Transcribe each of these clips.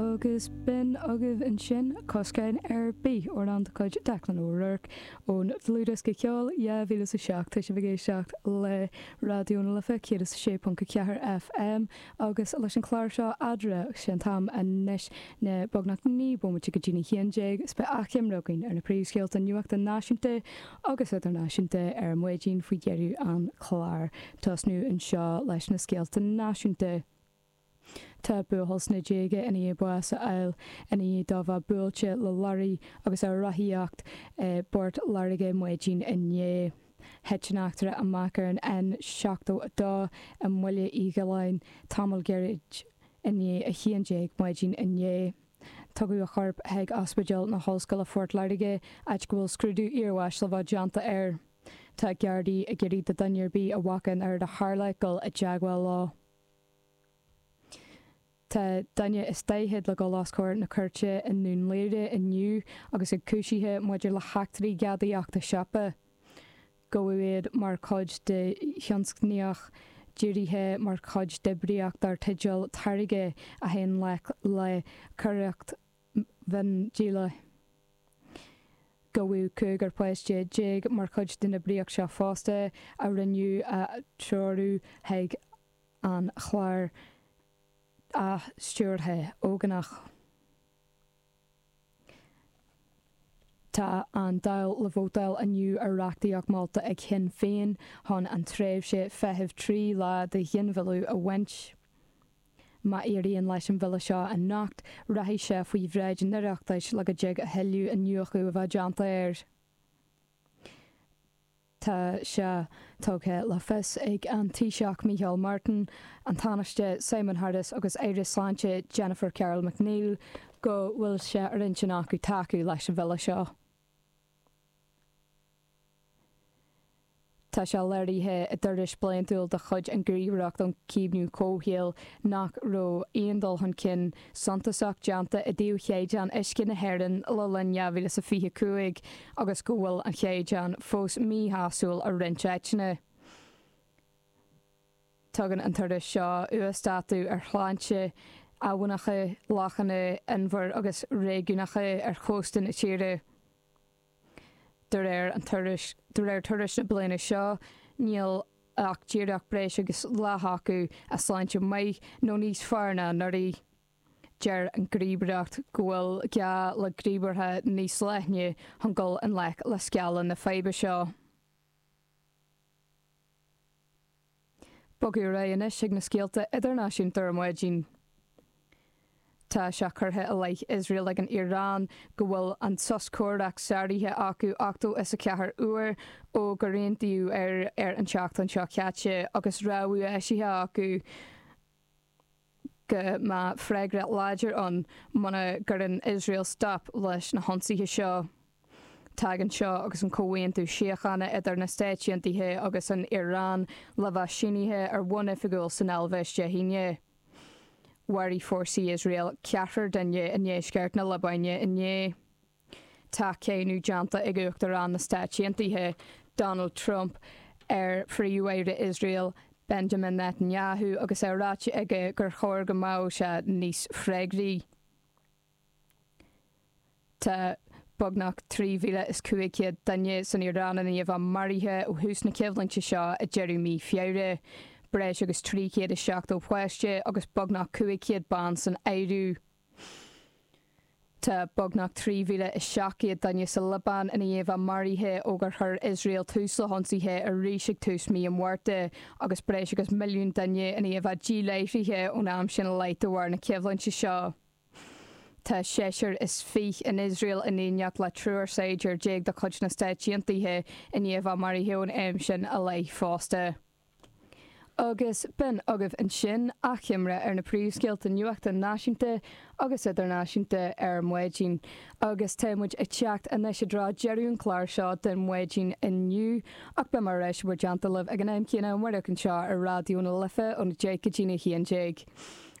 Agus b'in agaibh ansin coscáin ar bith amhrán de chuid Declan O'Rourke ón dlúthdhiosca ceol 2007 tá sibh ag éisteacht le Raidió na Life 106.4 FM agus leis an chlár seo Adre 'sé an t-am anois ná beagnach 9 bomaite go dtí an haon déag is beidh achoimre againn ar na príomhscéalta nuachta náisiúnta agus idirnáisiúnta ar maidin faoi dheireadh an chláir tosnú anseo leis na scéalta náisiúnta. Tá buachaill sna déaga i ndiaidh bás a fháil, i ndiaidh dó bheith buailte le lorraí agus é ag rothaíocht i bPort Láirge maidin inné. Thit an eachtra amach ar an N72 i mBaile Uí Ghiolláin tamall gairid i ndiaidh a haon déag maidin inné. Tugadh a chorp chuig Ospidéal na hOllscoile Phort Láirge áit go bhfuil scrúdú iarbháis le bheith déanta air. Tá Gardaí ag iarraidh ar dhuine ar bith a bhfaca an rud a tharla dul i dteagmháil leo. Tá duine is daichead le dhul os comhair na cúirte i nDún Laoghaire inniu agus iad cúisithe maidir le heachtraí gadaíochta siopa. Gabhadh iad mar chuid de thionscnaíocht dírithe mar chuid d'oibríocht darb teideal Táirge a bhaineann le coireacht mhiondíola. Gabhadh cúigear páiste déag mar chuid den oibríocht seo fosta, a rinneadh a threorú chuig an chlár athstiúrtha ógánach. Tá an Dáil le vótáil inniu ar reachtaíocht molta ag Shinn Féin chun an tréimhse feithimh trí lá do ghinmhilleadh a bhaint. Má éiríonn leis an bhille seo anocht, rachaidh sé faoi bhráid an Oireachtais le go dtig a thuilleadh iniúchadh a bheith déanta air. Tá sé tugtha le fios ag an Taoiseach Micheál Martin, an Tánaiste Simon Harris agus Aire Sláinte Jennifer Carroll MacNeill go bhfuil sé ar intinn acu tacú leis an bhille seo. Tá sé léirithe i dtuairisc bliantúil de chuid an Ghníomhaireacht um Chaomhnú Comhshaoil nach raibh aon dul chun cinn suntasach déanta i dtaobh Chaighdeán Uisce na hÉireann le linn 2025 agus go bhfuil an chaighdeán fós míshásúil i roinnt áiteanna. Tugann an tuairisc seo uasdátú ar shláinte abhannacha, lochanna, inbhir agus réigiúnacha ar chósta na tíre. de réir, de réir tuairisc na bliana seo níl ach díreach breis agus leath acu i sláinte maith nó níos fearr ná anuraidh. Deir an Gníomhaireacht go bhfuil gá le gníomhartha níos leithne chun dul i ngleic le scála na faidhbe seo. Bogadh ar aghaidh anois ag na scéalta idirnáisiúnta ar maidin. Tá sé curtha i leith Iosrael ag an Iaráin go bhfuil an sos comhraic sáraithe acu ochtó is a ceathair uair ó gur aontaíodh air an tseachtain seo caite agus rabhadh eisithe acu go mbeadh freagra láidir ann muna gcuireann Iosrael stop leis na hionsaithe seo. Tagann seo agus an comhaontú síochána idir na Stáit Aontaithe agus an Iaráin le bheith sínithe ar bhonn oifigiúil san Eilvéis Dé hAoine. Mharaigh fórsaí Iosrael ceathrar duine i ndeisceart na Liobáine inné. Tá cáineadh déanta ag Uachtarán na Stáit Aontaithe Donald Trump ar Phríomh-Aire Iosrael Benjamin Netanyahu agus é ráite aige gur chóir go mbeadh sé níos freagraí. Tá beagnach 3,500 duine san Iaráin i ndiaidh a bheith maraithe ó thús na coimhlinte seo ag deireadh mí Feabhra, breis agus 370 páiste agus beagnach 500 bean san áireamh. Tá beagnach 3,700 duine sa Liobáin i ndiaidh a bheith maraithe ó gur chuir Iosrael tús le hionsaithe arís ag tús mí an Mhárta, agus breis agus milliún duine i ndiaidh a bheith díláithrithe ón am sin i leith de bharr na coimhlinte seo. Tá seisear is fiche in Iosrael in éineacht le triúr saighdiúir déag de chuid na Stáit Aontaithe i ndiaidh a bheith maraithe ón am sin i leith fosta. Agus b'in agaibh ansin achoimre ar na príomhscéalta nuachta náisiúnta agus idirnáisiúnta ar maidin, agus tá muid ag teacht anois i dtreo deireadh an chláir seo don mhaidin inniu, ach beidh muid ar ais i bhur dteannta libh ag an am céanna amárach anseo ar Raidió na Life óna deich go dtína haon déag.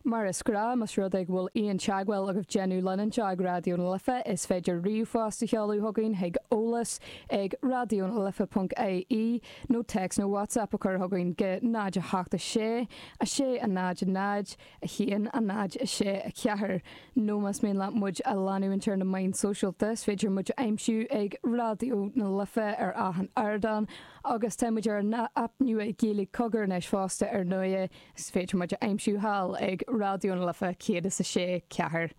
Mar is gnáth, más rud é go bhfuil aon teagmháil agaibh le déanamh linn anseo ag Raidió na Life, is féidir ríomhphost a sheoladh chugainn chuig eolas ag raidionalife.ie nó téacs nó WhatsApp a chur chugainn go 0 8 6 6 0 0 1 0 6 4 nó más mian leat muid a leanúint ar na meáin sóisialta, is féidir muid a aimsiú ag Raidió na Life ar achan ardán agus tá muid ar an aip nua Gaeilge Cogar anois fosta ar ndóigh. Is féidir muid a aimsiú thall ag Raidió na Life 106 4.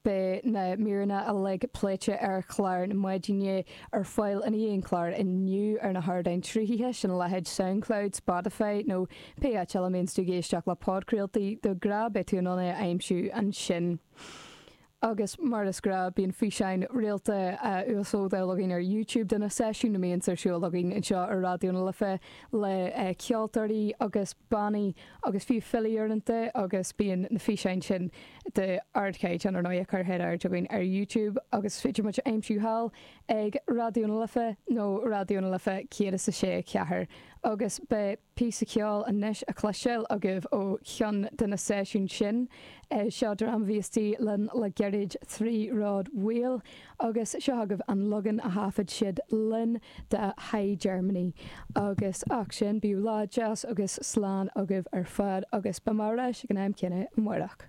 Beidh na míreanna uilig pléite ar chlár na maidine ar fáil i ndiaidh an chláir inniu ar na hardáin sruthaithe, sin a leithéid Soundcloud, Spotify nó pé áit eile a mbíonns tú ag éisteacht le podchraoltaí de ghnáth beidh tú in ann é a aimsiú ansin. agus mar is gnáth, bíonn físeáin rialta á uaslódáil againn ar YouTube de na seisiúin a bhíonns ar siúl againn anseo ar Raidió na Life le ceoltóirí agus bannaí agus fiú filí uaireanta agus bíonn na físeáin sin d'ardchaighdeán ar ndóigh curtha in airde againn ar YouTube agus is féidir muid a aimsiú thall ag Raidió na Life nó Raidió na Life 106.4 agus beidh píosa ceoil anois le cloisteáil agaibh ó cheann de na seisiúin sin. Seo dream a bhí istigh linn le gairid, Three Rod Wheel, agus seo agaibh an leagan a thaifead siad linn de High Germany. Agus seachas sin, bíodh lá deas agus slán agaibh ar fad agus beidh mé ar ais ag an am céanna amárach.